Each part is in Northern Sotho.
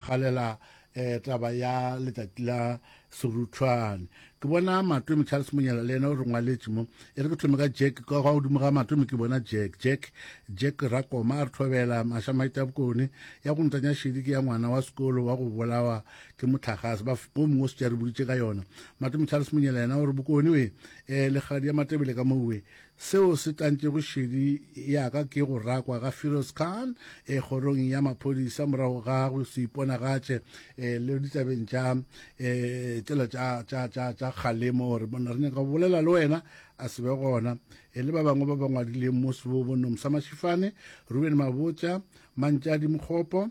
galela eh, taba ya letsatsi la seruthwane ke bona matome charles monyela le ena o re ngwaletše mo e re ke thome ka jack ka ga godimo ga matome ke bona jack jack jack rakoma a re thobela mašamaita bokone ya go ntanya šedi ke ya ngwana wa sekolo wa go bolawa ke motlhagase ba o mongwe o se tša re boditše ka yona matome charles monyela ena o re bokone we um eh, legadi ya matebele ka mowe Seo se tlantšego šedi ya ka ke go rakwa ga Firoz Khan e kgorong ya maphodisa morago ga go se iponagatše e, le ditabeng tša e, tsela tša, tša, tša, tša kgalemo gore monna re nyaka go bolela le wena a se be gona e, le ba bangwe ba ba ngwadileng mo sebobo Nomsa Mashifane, Ruben Mabotja, Mantšadi Mokgopo,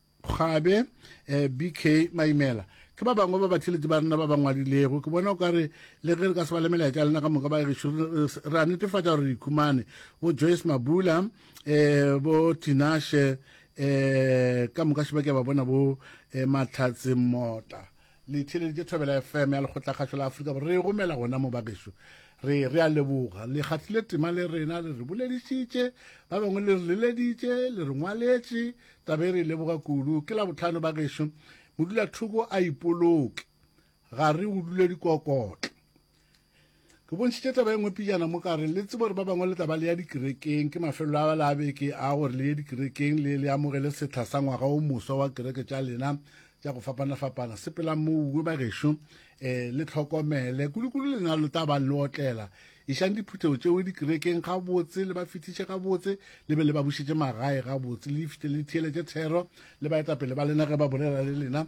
Kgwabe, eh, BK Maimela, ke ba bangwe ba batšhelete ba rena ba ba ngwadilego. Ke bona o ka re le ge re ka se ba le melaetša lena ka moka ba gešo re a netefatša gore re ikhumane. Bo Joyce Mabula, eh, bo Tinashe, eh, ka moka šeba ke ba bona bo eh, Matlhatse Mota. le theeleditše thobela fm ya lekgotlakgašo la afrika borwa re e romela gona mo bageso re re a leboga le gahlile tema le rena le re boledišitše ba bangwe le re leleditše le re ngwaletše tabe re e leboga kudu ke la botlhano bageso modulathoko a ipoloke ga re go dule dikokotla Ke bontšhitše taba e nngwe pijana mo ka re le tsebo gore ba bangwe le taba le ya dikerekeng ke mafelelo a la beke a gore le ye dikerekeng le le amogele setha sa ngwaga o moswa wa kereke tša lena tša go fapana-fapana sepela mouwe bagešo um eh, le tlhokomele kudu-kudu lena lo taba le otlela išang diphuthego tšeo dikerekeng ga botse le ba fitiše ga botse le be le ba bušetše magae ga botse le ifite le theeletše thero le baetapele ba lena ge ba bolela le lena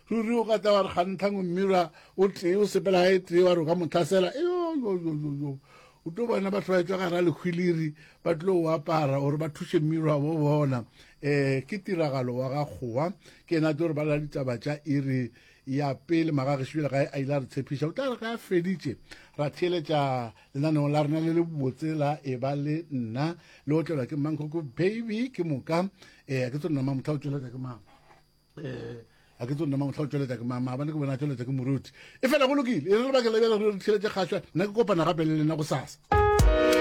ruri o ka tla wa re kgantlhang mmirwa o tee o sepela ga e tee wa re o ka motlhasela eyoyoyoyo o tlo bona batho ba etswa ga ra lekgwiliri ba tlo o apara gore ba thuše mmirwa bo bona um eh, ke tiragalo wa ga kgowa ke ena a tlo re balela ditaba tša iri ya pele magagesebile gae a ile a re tshepiša o tla re ga a feditše ra theeletša lenaneo la rena le le botse la e ba le nna le otlelwa ke mankoko baby ke moka um ke tso nna mamotlha o tšweletša ke mang a ke tsone mang tla tšweletsa ke mama ba ne ke bona tšweletsa ke moruti e fela go lokile e re lebakela bjale re tšheletse kgašwa nna ke kopana gape le lena go sasa